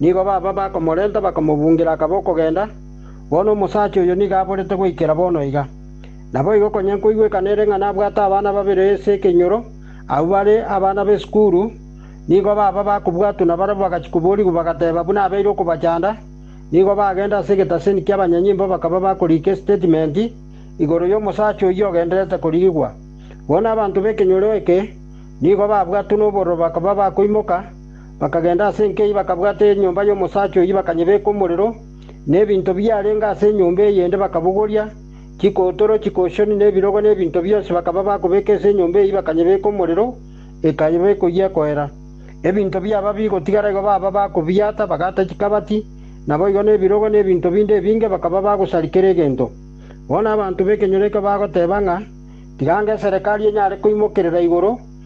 Nigo baba bakomorenta bakamobungira akaba okogenda, bono omosacha oyo nigo aborete goikera bono iga. Naboigo konya nkoigwekana ere ng'a nabwate abana babere ase ekenyoro, abwo bare abana b'esukuru, nigo baba bakobwatwa na barabwo bagachia koborigwa bagateba buna abeire okobachanda, nigo bagenda ase egetaseni ki'abanyanyimbo bakaba bakoriika esitatimenti igoro y'omosacha oyio ogendererete korigigwa. Bono abanto b'ekenyoro eke nigo babwatwe nobororo bakaba bakoimoka, Bakagenda ase enkei bakabwata enyomba y'omosacha oyio bakanyebeka omorero, na ebinto biarenge ase enyomba eyende bakabogoria, chikotoro, chikoshoni, na ebirogo, na ebinto bionsi bakaba bakobeka ase enyomba eyio bakanyebeka omorero, ekaba ekoyia ekoera. Ebinto biaba bigotigara igo baba bakobiata, bagata chikabati, naboigo nebirogo na ebinto binde ebinge bakaba bagosaria kera egento. Bono abanto b'ekenyoro ekio bagoteba ng'a, Tiga ange eserekari enyare koimokerera igoro,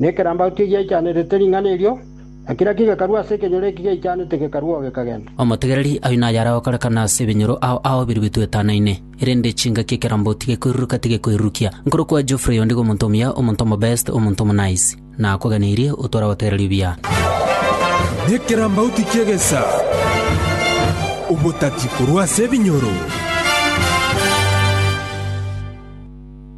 Nekerambauti egiaichanerete ring'ana erio, na kera kigekarwa ase ekenyoro eki giaichanete gekarua oo gekagenda. Omotegereri, ayio naye aragokorekana ase ebinyoro ao ao biria bitwetanaine. Erinde chingaki ekerambauti gekoiruruka tigekoirurukia. Nkorokwa Geoffrey onde iga omonto omuya, omonto omobest, omonto omonice. Nakoganeirie, otware abategereria buya. Nekerambauti ki'egesa, obotati korwa ase ebinyoro.